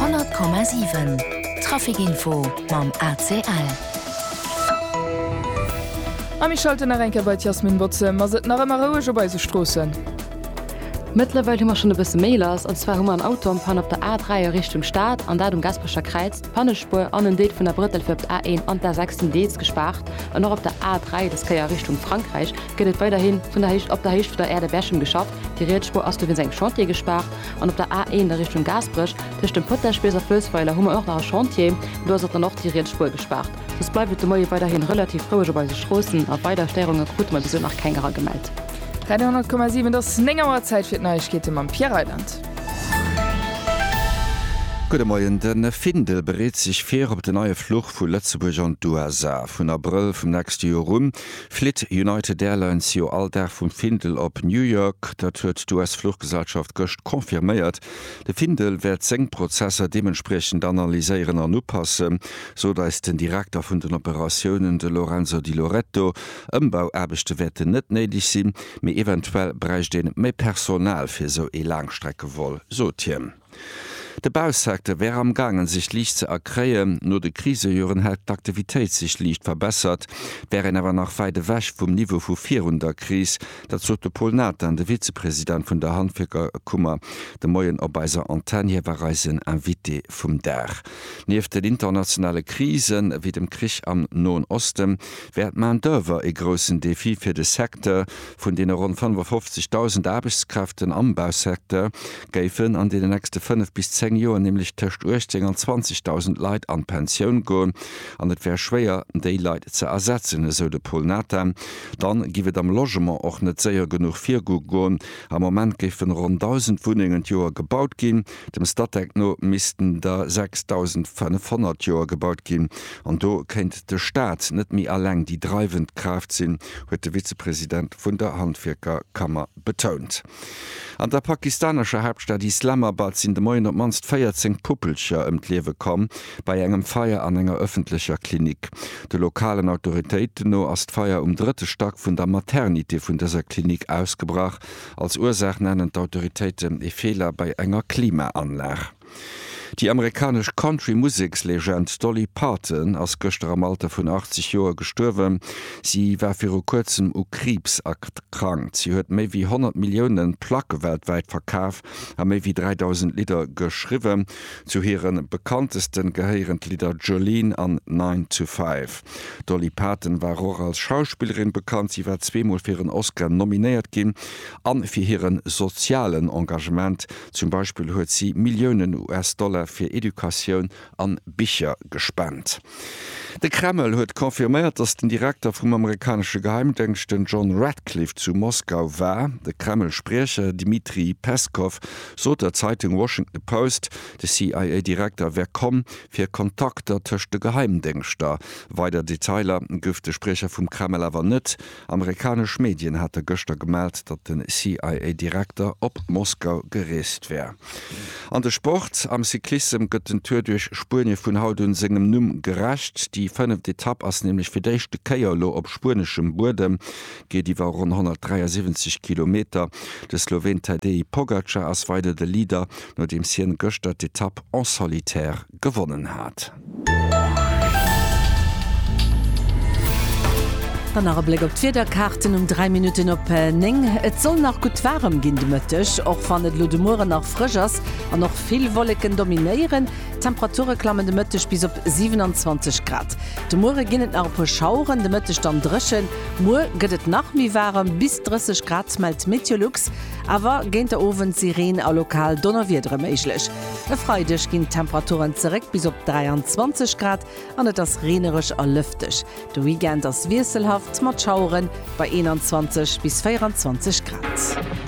100,7 Trafic Info mam ACL. A mir schalten nach eng Kéier bei d'Yasmin Botze. Ass et nach ëmmer roueg op eise Stroossen? Mëttlerweil hu mer schonn e bësse méi lass. An zwar hu mer en Auto am Pann op der A3 a Richtung Stad, an dat um Gasperecher Kräiz. D'Pannespuer an en Deel vun der Brëttel fir op d'A1 an d'A6 sinn deels gespaart. An och op der A3, des Kéier a Richtung Frankräich, gëtt et weiderhi vun der Héicht op der Héicht vun der Aire de Berchem geschafft. Déi riets Spuer ass dowéinst engem Chantier gespaart. An op der A1 a Richtung Gaasperech, tëscht dem Potagebéis a Fëlsweiler, hu mer och nach e Chantier. Do ass och dann och déi riets Spuer gespaart. Soss bleift et de Moie weiderhi relativ roueg op eise Stroossen a weider Stéierunge krute mer bis elo nach keng eragemellt. Radio 10,7 et ass 9 Auer, Zäit fir d'Neiegkeete mam Pierre Reyland. Gudde Moien, De Findel bereet sech vir op den neie Fluch vu Lëtzebuerg an d'USA. Vun Abrëll vum nächste Joer un Flitt United Airlines jo all Dag vum Findel op New York? Dat huet d'US-Fluchgesellschaft gëscht confirméiert. De Findel wäert seng Prozesser deementspriechend analyséieren an upassen, sot eis den Direkter vun den Operatiounen, de Lorenzo Di Loretto. Ëmbauaarbechte wäerten net néideg sinn, mee eventuell bräicht een méi Personal fir esou ee Laangstreckevol, sot hien. De Bausecteur wär am gaangen sech liicht ze erkréien. No de Krisejoren hätt d'Aktivitéit sech liicht verbessert, wär een awer nach wäit ewech vum Niveau vu virun der Kris. Dat sot de Paul Nathan, de Vizepresident vun der Handwierkerkummer de Moien op eiser Antenn. Hie war eisen Invité vum Dag. Nieft den internationale Krisen, ewéi dem Krich am Noen Osten, wär d'Main-d'oeuvre ee groussen Defi fir de Secteur, Vun deene ronn 55.000 Aarbechtskräften am Bausecteur géifen an deenen nächste fënnef bis zéng Joer nämlech tëscht 18 an 20.000 Leit an d'Pensioun goen an et wär schwéier, déi Leit ze ersetzen, esou de Paul Nathan. Dann giff et am Logement och net séier genuch virgoen. Am Moment géifen ronn 1.000 Wunnengen d'Joer gebaut ginn. Dem Statec no missten der 6.500 Joer gebaut ginn, an do kéint de Staat net méi alleng déi dreiwend Kraaft sinn, huet de Vizepresident vun der Handwierkerkammer betount. An der pakistanescher Haaptstad Islamabad sinn de Moien op d'mannst 14 Puppelcher ëm d'Liewe komm, bei engem Feier an enger ëffentlecher Klinik. De lokalen Autoritéiten no ass d'Feier um drëtte Stack vun der Maternité vun dëser Klinik ausgebrach Als Ursaach nennen d'Autoritéiten ee Feeler bei enger Klimaanlag. Déi amerikanesch Country-Musekslegend Dolly Parton ass gëschter am Alter vun 80 Joer gestuerwen. Si war viru kuerzem u Kriibs erkrankt. Si huet méi wéi 100 Millioune Placke weltwäit verkaf a méi wéi 3.000 Lidder geschriwwen. Zu hire bekannteste gehéieren d'Lidder Jolene an Nine to Five. D'Dolly Parton war och als Schauspillerin bekannt, si war zweemol fir en Oscar nominéiert ginn a fir hire sozialen Engagement, zum Beispill huet si Milliounen US-Dollar fir Educatioun a Bicher gespent. De Kreml huet confirméiert, datt den Direkter vum amerikanesche Geheimdéngscht, den John Ratcliffe, zu Moskau war. De Kreml-Spriecher Dmitry Peskow sot der Zeitung Washington Post, de CIA-Direkter wär komm, fir Kontakter tëscht de Geheimdéngschter. Weider Detailer gouf de Spriecher vum Kreml awer net. Amerikanesch Medien hate gëschter gemellt, datt de CIA-Direkter op Moskau gereest wär. An de Sport, Am Cyclissem gëtt den Tour duerch Spuenie vun haut un sengem Numm gerecht. Déi fënneft Etapp ass nämlech fir d'éischte Kéier elo op spueneschem Buedem. geet iwwer ronn 173 Kilometer. De Sloween Tadej Pogacar ass weider de Leader, nodeems hien gëschter d'Etapp en solitaire gewonnen hat. Dann nach e Bléck op d'Wiederkaarten um 3 Minutten op 9. Et soll nach gutt waarem ginn de Mëtteg, och wann et elo de Mueren nach frësch ass an och vill Wolleken dominéieren. D'Temperature klammen de Mëtteg bis op 27 Grad. De Muere ginn et nach e puer Schaueren, de Mëtteg dann dréchen. Muer gëtt et nach méi waarem, bis 30 Grad mellt d'Meteolux, awer géint der Owend si Reen a lokal Donnerwiedere méiglech. E Freideg ginn d'Temperaturen zeréck bis op 23 Grad an et ass reenereg a lëfteg. De Weekend ass wiesselhaft mat Schauere bei 21 bis 24 Grad.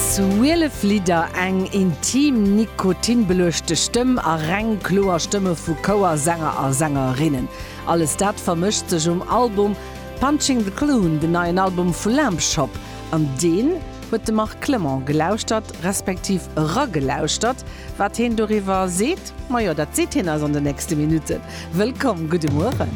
Zwielef Lidder, eng intim, Nikotin-beluechte Stëmm a reng kloer Stëmme vu Chouersänger a sängerinnen, alles dat vermëscht sech um Album Punching the Clown, den neien Album vu Lamp Shop. An deen huet de Marc Clement gelauschtert, respektiv eragelauschtert. Wat heen doriwwer seet, majo, dat seet hien eis an den nächste Minutten. Wëllkomm, gudde Mueren!